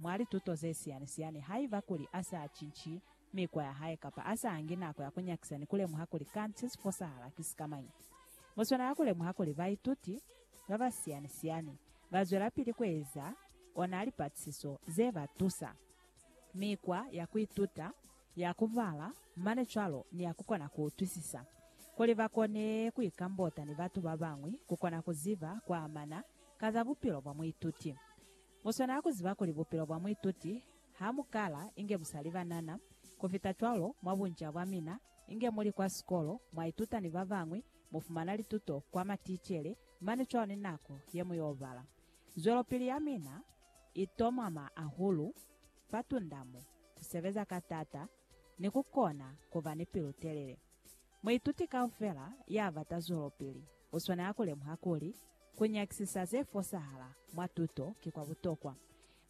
mwa lituto ze siyani-siyani, haiba kuli a sa cinci mikwa ya hae kapa a sa angi nako ya ku nyakisa ni ku lemuha kuli kanti se si fosahala ki sikamañi. Mu swanela ku lemuha kuli baituti ba ba siyani-siyani ba zwelapili ku eza ona lipatisiso ze ba tusa. Mikwa ya ku ituta, ya ku bala, mane cwalo ni ya ku kona ku utwisisa, kuli ba kone ku ikambota ni batu ba bañwi, ku kona ku ziba kwa amana ka za bupilo bwa muituti. Mu swanela ku ziba kuli bupilo bwa muituti ha mu kala inge bu sa li banana. Ku fita cwalo, mwa bunca bwa mina, inge mu li kwa sikolo, mwa ituta ni ba bañwi, mu fumana lituto kwa maticele, mane cwalo ni nako ye mu y'o bala. Zwelopili ya mina i tomama hahulu fa tunda mo, ku sebeza ka t'ata, ni ku kona ku ba ni pilu-telele. Muituti kaufela ya bata zwelopili u swanela ku lemuha kuli, ku nyakisisa ze fosahala mwa tuto ki kwa butokwa,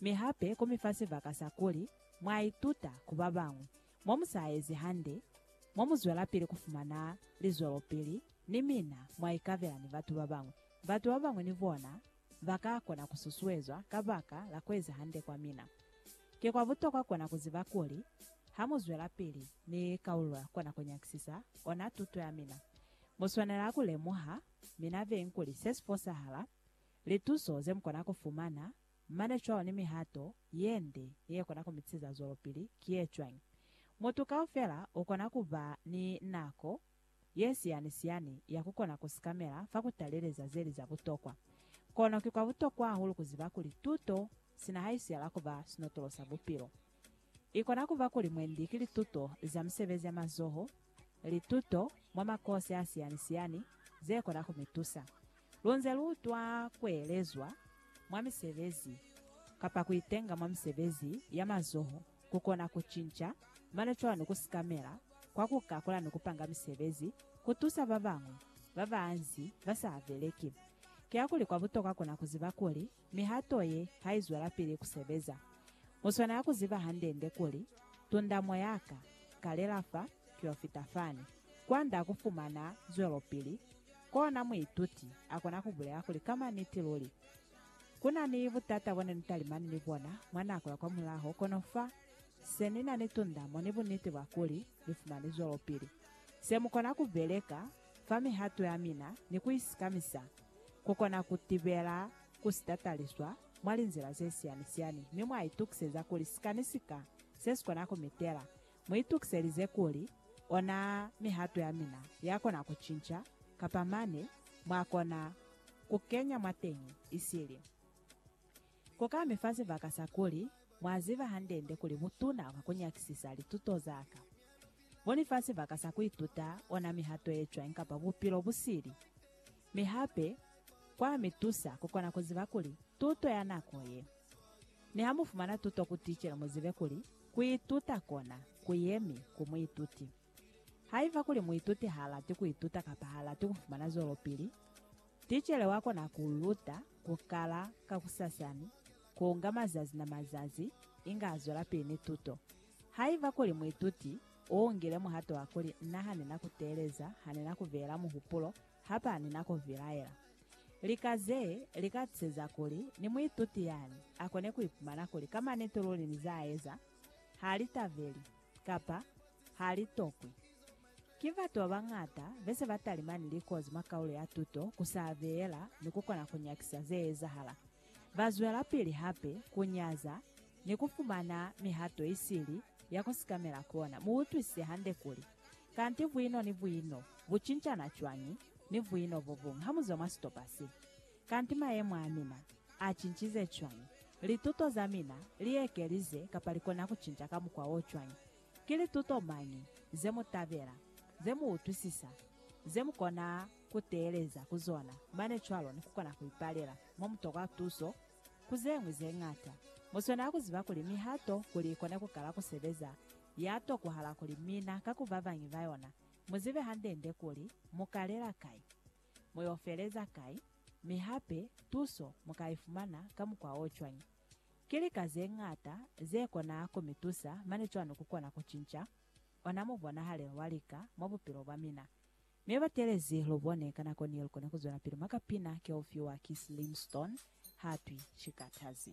mi hape ku mi fa sibaka sa kuli mwa ituta ku ba bañwi. Mo mu sa ezi hande, mo mu zwelapili ku fumana lizwelopili ni mina mwa ikabela ni batu ba bañwi. Batu ba bañwi ni bona Ba ka kona ku susuezwa kabaka la ku eza hande kwa mina. Ki kwa butokwa kona ku ziba kuli, ha mu zwelapili ni kaulo kwa nako nyakisisa ona tuto ya mina, mu swanela ku lemuha mina beng kuli se si fosahala, lituso ze mu kona ku fumana, mane cwalo ni mihato ye nde ye kona ku mi tisa zwelopili ki ye cwañi. Mutu kaufela u kona ku ba ni nako ye siyani-siyani ya ku kona ku sikamela fa ku taleleza ze li za butokwa. Kono ki kwa butokwa hahulu ku ziba kuli tuto sina ha i siyala ku ba sinotolo sa bupilo. I kona ku ba kuli mwendi ki lituto za misebezi ya mazoho, lituto mwa makosi a siyani-siyani ze kona ku mi tusa lu nze lu utwa ku elezwa mwa misebezi kapa ku itenga mwa misebezi ya mazoho. kukona kucinca mano cwalo ku sikamela kwa ku kakula ni kupanga misebezi, ku tusa ba bañwi ba ba anzi ba sa beleki. Kiyakuli kwa butokwa kona ku ziba kuli mihato ye ha i zwelapili ku sebeza. U swanela ku ziba hande-nde kuli, Tundamo ya ka, kalela fa, ki yo fita fani. Kwand'a ku fumana zwelopili, kona muituti a kona ku bulela kuli ka maniti luli Ku na ni butata bo ne ni talimani ni bona mwa nako ya kwamulaho, kono fa se ni na ni tundamo ni buniti bwa kuli ni fumani zwelopili. Se mu kona ku beleka fa mihato ya mina ni ku isikamisa ku kona ku tibela ku si tataliswa mwa linzila ze siyani-siyani mi mwa itukiseza kuli sikani sika se si kona ku mi tela Mu itukiselize kuli ona mihato ya mina ya kona ku cinca, kapa mane mwa kona ku kenya mwateñi isili. Ku ka mi fa sibaka sa kuli, Mwa ziba hande-nde kuli butuna bwa ku nyakisisa lituto za ka bu ni fa sibaka sa ku ituta ona mihato ye cwañi kapa bupilo bu sili. Mi hape kwa mi tusa ku kona ku ziba kuli tuto ya nako ye. Ni ha mu fumana tuto ku ticele mu zibe kuli Kuituta kona ku yemi ku muituti. Haiba kuli muituti ha lati kuituta kapa ha lati kufumana zwelopili, ticele wa kona ku luta ku kala kakusasani, ku nga mazazi na mazazi, inge a zwelapili ni tuto. Haiba kuli muituti u ngile muhato wa kuli, Nna ha ni na ku teeleza, ha ni na ku beela muhupulo, Ha ba ni na ku vilaela. Lika ze li ka tuseza kuli ni muituti yani a kone ku ipumana kuli ka maniti luli ni za eza ha li tabeli kapa ha li tokwi. Ki batu ba bañata be se ba talimani likozi mwa kaulo ya tuto ku sa beela ni ku kona ku nyakisa ze ezahala. Ba zwelapili hape ku nyaza ni ku fumana mihato isili ya ku sikamela kona. Mu utwisise hande kuli, Kanti vwino ni vwino bu cincana cwañi ni vwino bo buñwi ha mu zwa mwa sitopa se? Kanti mayemo a mina a cincize cwañi? Lituto za mina li ekelize kapa li kona ku cinca ka mukwa o cwañi? Ki lituto mañi ze mu tabela, ze mu utwisisa, ze mu kona ku teeleza ku zona mane cwalo ni ku kona ku ipalela mo mu tokwa tuso? Ku ze ñwi ze ñata, mu swanela ku ziba kuli mihato kuli i kone ku kala ku sebeza Ya tokuhala kuli mina ka ku babañi ba yona mu zibe hande-nde kuli mu kalela kai, mu yo feleza kai, mi hape tuso mu ka i fumana ka mukwa o cwañi. Ki lika ze ñata ze kona ku mi tusa, mane cwalo ku kona ku cinca ona mubonahalelo wa lika mwa bupilo bwa mina. Mi batelezi lu bone, ka nako ni lu kona ku zwelapili mwa kapina ke u fiwa ki Slim Stone, ha twi, Ki katazi.